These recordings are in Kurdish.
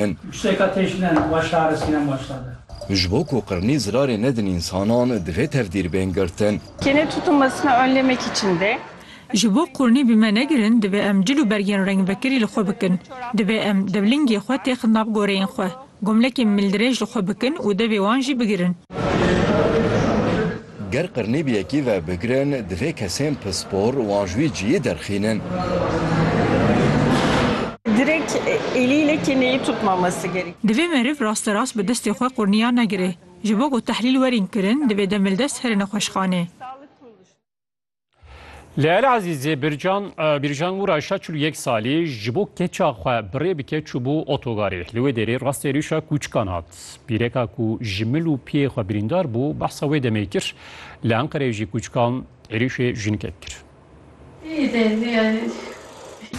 in. Piştêka têşine va şare sînem waşta be. Ji bo ku qirnî zirarê nedin însanan divê tevdîr bên girtin. Kênê tutulmesine önlemek için de. Ji bo qirnî bi me negirin divê em cil û bergên rengvekirî li xwe bikin. Divê em devlingê xwe têxin nav goreyên xwe. Gomlekên mildirêj li xwe bikin û devê wan jî bigirin. Ger qirnî bi yekî ve bigirin, divê kesên pispor wan ji wî ciyî derxînin. Direk elî lekê neyê tutmamesi gerek. Divê meriv rasterast bi destê xwe qurniya negire. Ji bo ku tehlîl werîn kirin, divê demildest here nexweşxanê. Leyal Azîzê Bircan Bircan Wura şa çil yek salî ji bo keça xwe birê bike çûbû otogarê. Li wê derê rastê rîşa kûçikan hat. Pîreka ku ji mil û piyê xwe birîndar bû behsa wê demê kir. Li Enqereyê jî kûçikan êrîşê jinkek kir.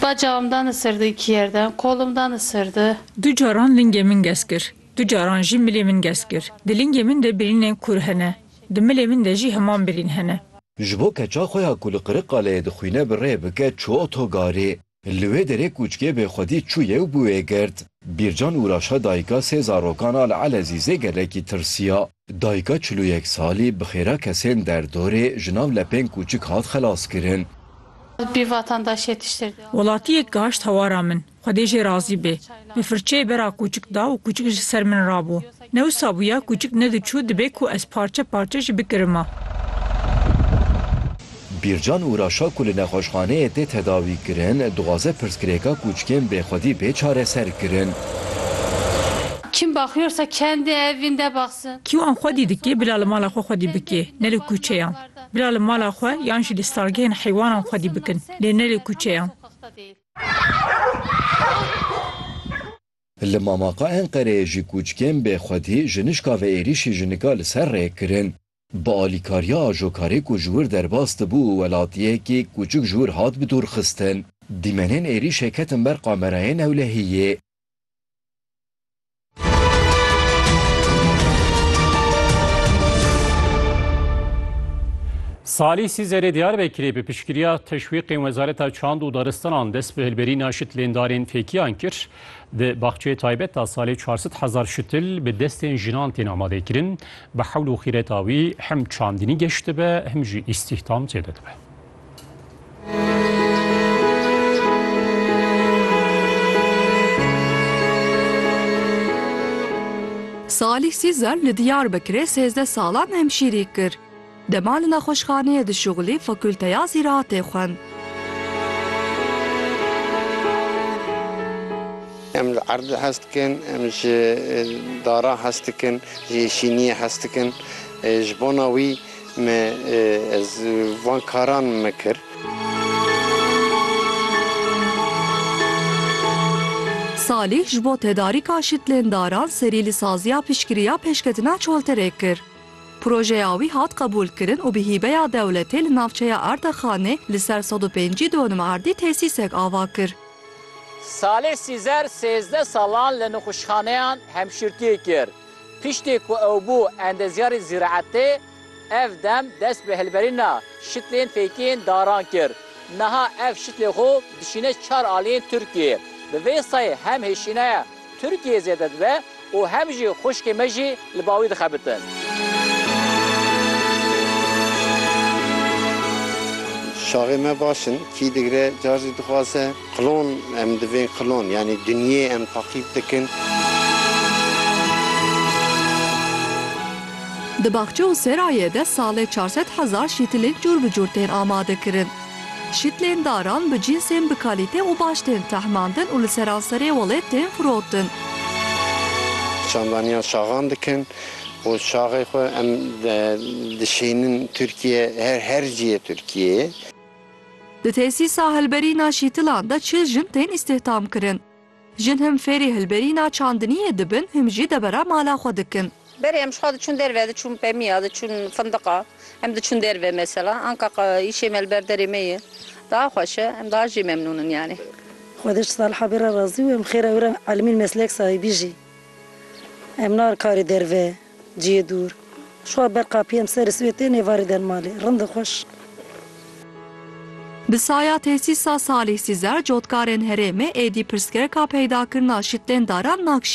Bacağım dan ısırdı iki yerden, kolum dan ısırdı. Du caran lingê min gez kir. Du caran jî milê min gez kir. Di lingê min de birînên kûr hene. Di milê min de jî heman birîn hene. Ji bo keça xwe ya ku li Qiriqaleyê dixwîne bi rê bike çû otogarê. Li wê derê kûçkê bê xwedî çûye û bi wê girt. Bîrcan Uraşa dayika sê zarokan a li Elezîzê gelekî tirsiya. Dayika çil û yek salî bi xêra kesên derdorê ji nav lepên kûçik hat xelaskirin. Bi vatandaşiyê tiştir. Welatiyek gaşt hawara min. Xwedê jê razî bê. Bi firçeyê bera kûçik da û kûçik ji ser min rabû. Ne wisa bûya kûçik nediçû dibê ku ez parçe parçe jî bikirima. Bîrcan û Raşa ku li nexweşxaneyê tê tedawîkirin, dixwaze pirsgirêka kûçikên bêxwedî bê çareserkirin. Kim bakıyorsa kendi evinde baksın. Kî wan xwedî dikê bila li mala xwe xwedî bikê, ne li kûçeyan. Bila li mala xwe yan jî li stalgehên heywanan xwedî bikin, lê ne li kûçeyan. Li mamaqa Enqereyê jî kûçkên bê xwedî ji nişka ve êrîşî ji nika li ser rê kirin. Bi alîkariya ajokarê ku ji wir derbas dibû û welatiyekî kûçik ji wir hat bidûrxistin, dîmenên êrîşê ketin ber kamerayên ewlehiyê. Salî Sîzerê Diyarbekirê bi piştgiriya teşwîqên Wezareta Çand û Daristanan dest bi hilberîna şitlêndarên fêkiyan kir. Di baxçeyê taybet de salê 400 hezar şitil bi destên jinan tên amadekirin. Bi hewl û xîreta wî hem çandinî geş dibe hem jî îstîhdam zêde dibe. Salîh Sîzer li Diyarbekirê sêzdeh salan hemşîrî kir. Dema li nexweşxaneyê dişuxilî Fakulteya Zîraatê xwend. Em li erdê hez dikin, em ji dara hez dikin, ji yêşîniyê hez dikin. Ji bona wî Me ez van karan me kir. Salîh ji bo tedarîka şitlêndaran serî li saziya piştgirî ya pêşketina çolterê kir. Projeya wî hat qebûlkirin û bi hîbeya dewletê li navçeya Erdexanê li ser sed û pêncî donim erdî tesîsek ava kir. Salih Sîzer sêzdeh salan li nixweşxaneyan hemşîrtiyê kir. Piştî ku ew bû endezyarê zîraetê, ev dem dest bi hilberîna şitlên fêkiyên daran kir. Niha ev şitlê xwe dişîne çar aliyên Tirkiyeyê. Bi vê sayê hem hêşînaya Tirkiyeyê zêde dibe û hem jî xwişkên me jî li ba wî dixebitin. Şaxê me baş in, kî digre car jî dixwaze. Klon, em divên klon yanî dinyê em taqîb dikin. Di baxçe û serayê de salê çar sed hezar şîtilên cûr bi cûr tên amadekirin. Şîtlên daran bi cînsên bi kalîte û baş tên tehmandin û li seranserê welêt tên firotin. Çandaniya şaxan dikin û şaxê xwe em dişînin Tirkiyeyê, her ciyê Tirkiyeyê. Di tesîsa hilberîna şîtilan de çil jin tên îstîhdam kirin. Jin him fêrî hilberîna çandiniyê dibin him jî debera mala xwe dikin. Berê em jixwe diçûn derve, diçûn pemiya, diçûn findiqa, em diçûn derve mesela. Anka îşê me li ber derê me ye. Daha xweş e, em daha jî memnûn in yanî. Xwedê ji Saliha bê re razî û em xêra wê re elmîn meslek sahibî jî. Em narin karê derve. Ciyê dûr. Şwa ber qapiyem serê sibê tên êvarê den malê. Rindi xweş. Bi saya tesîsa Salîh Sîzer cotkarên herêmê êdî pirsgirêka peydakirina şitlên daran nakşî.